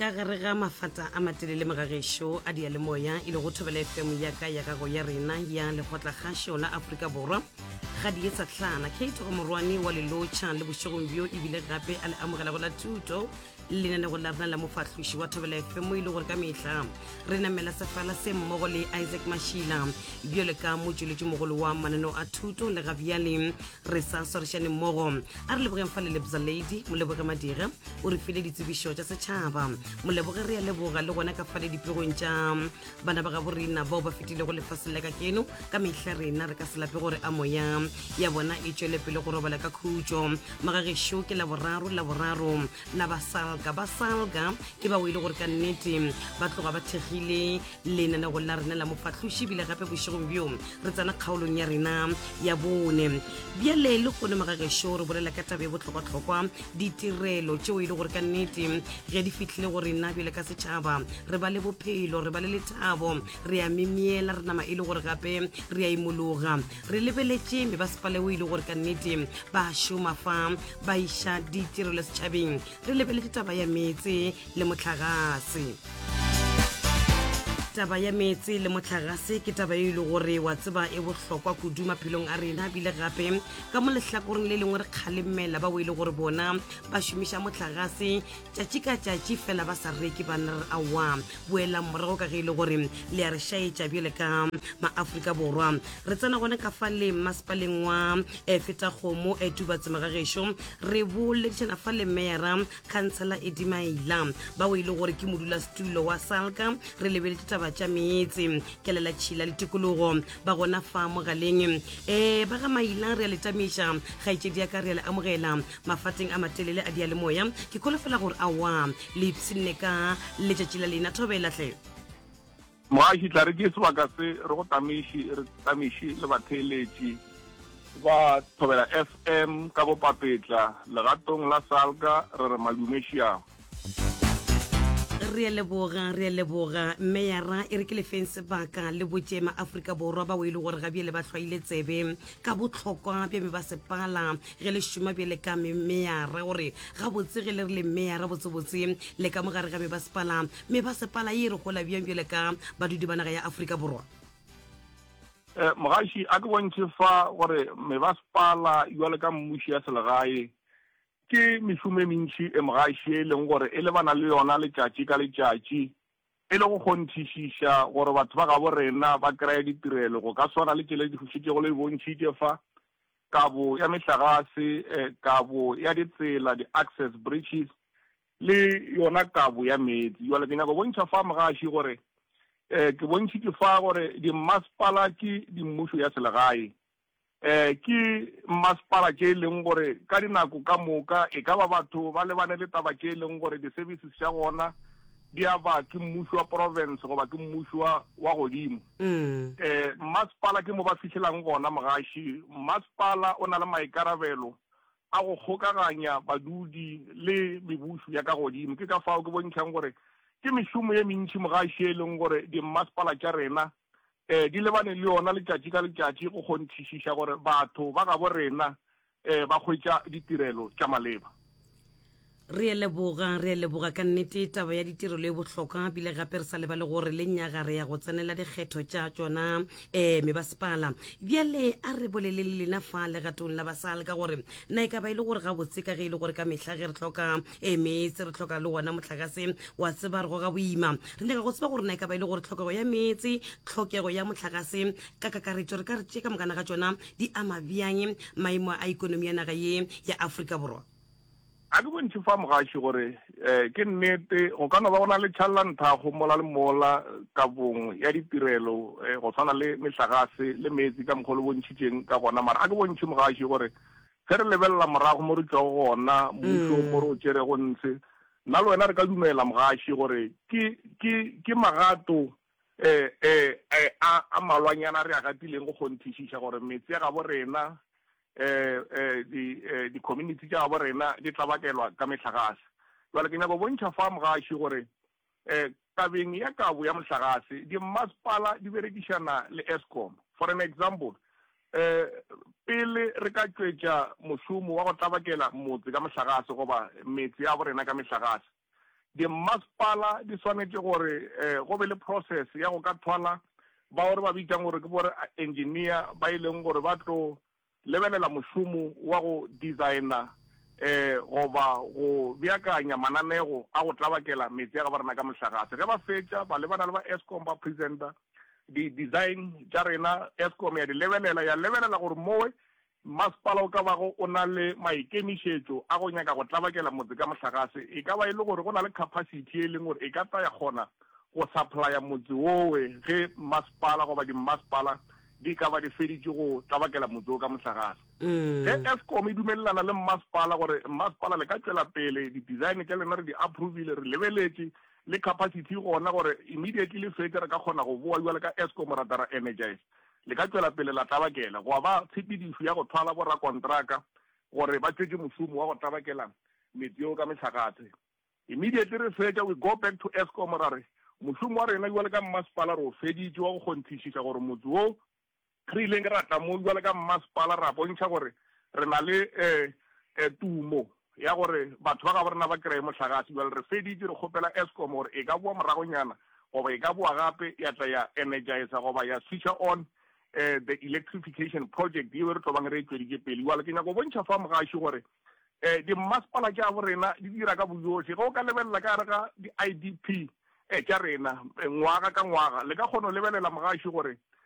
ka gare ga mafata a matelele mogagešo a diyalemoya e le go thobela fm ya ka ya gago ya rena ya lekgotlakgašo la aforika borwa ga di etsa tlhana kate omorwane wa lelotšha le bošegong bjo ebile gape a le amogelago la thuto lenanego la rena la mofahloši wa thobela fm e le gore ka mehla re namela sefala se mmogo le isaac mashila bjale ka motšweletši mogolo wa mananeo a thuto le ga bjale re sa swarešane mmogo a re lebogeng fa lelebza lady moleboge madira o re file ditsebišo tša setšhaba moleboge re ya leboga le gona ka fale dipegong tša bana ba gabo rena bao ba fetilego lefaseng la ka keno ka mehla rena re ka se lape gore a moya ya bona e tšwele pele go robala ka khutšo magagešo ke laboraro laboraro na ba salga ba salga ke bao e le gore ka nnete ba tloga ba thekgile lenanegong la rena la mofahloši ebile gape bošegong bjo re tsena kgaolong ya rena ya bone bjale le kgone magagešo re bolela ka tabe botlhokwatlhokwa ditirelo tšeo e le gore ka nnete ge di fitlhile go rena bjale ka setšhaba re ba le bophelo re ba le lethabo re a memeela re nama e le gore gape re a imologa re lebeletše me ba sepale o ile gore ka nnete ba šoma fa ba iša ditirelo setšhabeng re lebeletše taba ya metse le motlhagase taba ya metse le motlhagase ke taba e le gore wa tseba e bohlokwa kudu maphelong a rena bile gape ka mo lehlakoreng le lengwe re kgalemela ba o e le gore bona ba šomiša motlhagase tšatši ka tšatši fela ba sa reke banna re aowa boelang morago ka ge e le gore le ya re šaetša bjale ka maaforika borwa re tsena gone ka fa le mmasepaleng wa e feta kgomo e tubatsema ga gešo re boledišana fa le mera khansela e dimaila ba o e le gore ke modula setulo wa salka re lebeletse taba tša meetse kelela tšhila le tikologo ba gona fa mogaleng um ba ga maila re a le tamiša kgaetšedi ya ka re a le amogela mafateng a matelele a diyalemoya ke kholofela gore a wa le ipshinne ka letšatši la lena thobela tle Mogaši, tla re ke sebaka se re go tameiši, re tameiši le batheeletši ba Thobela FM ka bopapetla legatong la Salga, re re madume šiao. re leboga re leboga mme yara e re ke lefeng sebaka le botše maaforika borwa ba o e le gore ga bjele ba hlwaile tsebe ka bohlokwa bja me ba sepala ge le šoma bjele ka meyara gore gabotse ge le re le meyara botsebotse le ka mo gare ga me ba sepala me ba sepala e re gola bjang bjele ka badudi ba naga ya aforika borwa eh, mogaši a ke bontšhe fa gore me ba sepala jwale ka mmuši ya selegae Ke mešomo e mentši e mogaši ye e lego gore e lebana le yona letšatši ka letšatši, e le go kgonthišiša gore batho ba gabo rena ba kreye ditirelo go ka swana le tšele di fošitšego le e bontšhitše fa, kabo ya mehlagase, kabo ya ditsela, di-access bridges, le yona kabo ya meetse. Bjale ke nyaka go bontšha fa, mogaši, gore ke bontšhitše fa gore dimmasepala ke dimmušo ya selegae. Ke mmasepala tše e leng gore ka dinako ka moka e ka ba batho ba lebane le taba tše e leng gore di-services tša gona di a ba ke mmušo wa province goba ke mmušo wa wa godimo. Mmasepala ke mo ba fihlelang gona mogaši. Mmasepala o na le maikarabelo a go kgokaganya badudi le mebušo ya ka godimo. Ke ka fao ke bontšhang gore ke mešomo e mentši mogaši e leng gore dimmasepala tša rena di lebane le yona letšatši ka letšatši go kgonthišiša gore batho ba gabo rena ba hwetša ditirelo tša maleba. Re a leboga, re a leboga ka nnete. Taba ya ditirelo e bohlokwa bile gape re sa lebale gore le nyaga re ya go tsenela dikgetho tša tšona um mebasepala. Bjale a re bolele le lena fa legatong la basal ka gore na e ka ba e le gore gabotse ka ge e le gore ka mehla ge re hloka ee meetse re tlhoka le wona motlakase wa tseba re goga boima re nyaka go tseba gore na e ka ba e le gore tlhokego ya meetse tlhokego ya motlakase ka kakaretso re ka re tše ka mokana ga tsona di ama bjang maemo a ikonomi ya naga ye ya aforika borwa a ke bontšhe fa mogaši gore um ke nnete go ka no ba go na le tšhalelanthago mola le mola kabong ya ditirelo um go tshwana le metlagase le meetse ka mokgwa le bontšhitšeng ka gona mara a ke bontšhe mogaši gore Ge re lebelela morago mo re tšwago gona, mmušong mo re o tšerego ntshe, nna le wena re ka dumela, mogaši, gore ke, ke, ke magato e, e, e, a, a malwanyana a re a gatileng go kgonthišiša gore metse ya gabo rena, e, e, di, e, dikhominithi tša gabo rena di tla bakelwa ka mehlagase. Bjale ke nyaka go bontšha fa, mogaši, gore Tabeng ya kabo ya mohlagase, dimmasepala di berekišana le Eskom. For an example, pele re ka tšwetša mošomo wa go tlabakela motse ka mohlagase goba metse ya borena ka mehlagase, dimmasepala di swanetše gore go be le process ya go ka thwala bao re ba bitšang gore ke bo-engineer ba e leng gore ba tlo Lebelela mošomo wa go dizaena goba go beakanya mananego a go tlabakela meetse a gaborena ka mohlagase. Ge ba fetša, ba lebana le ba Eskom ba presenta di dizaen tša rena. Eskom ya di lebelela, ya lebelela gore mowe masepala o ka bago o na le maikemišetšo a go nyaka go tlabakela motse ka mohlagase. E ka ba e le gore go na le khapasithi ye e leng gore e ka tla ya kgona go saplaya motse wowe ge masepala goba dimmasepala di ka ba di feditše go tlabakela motse wo ka mohlagase. Ge Eskom e dumelelana le mmasepala gore mmasepala le ka tšwela pele, didesign tša lena re di approvile, re lebeletše le capacity gona gore immediately le fetše re ka kgona go boa bjale ka Eskom ra tla ra energize, le ka tšwela pele la tlabakela. Gwa ba tshepedišo ya go thwala borakontraka gore ba tšwetše mošomo wa go tlabakela metse yeo ka mehlagase. Immediately re fetša we go back to Eskom ra re mošomo wa rena bjale ka mmasepala re o feditše wa go kgonthišiša gore motse wo re ileng ra tla mo bjale ka mmasepala ra bontšha gore re na le um tumo ya gore batho ba gabo rena ba kreye mohlagase bjale re feditše re kgopela Eskom gore e ka boa moragonyana goba e ka boa gape ya tla ya energizer goba ya switcha on um the electrification project yeo re tlo bang re e tšweditše pele bjale ke nyaka go bontšha fa mogaši gore Ee, dimmasepala tša bo rena di dira ka boyohle. Ge o ka lebelela ka gare ga di-IDP tša rena ngwaga ka ngwaga, le ka kgona go lebelela mogašo gore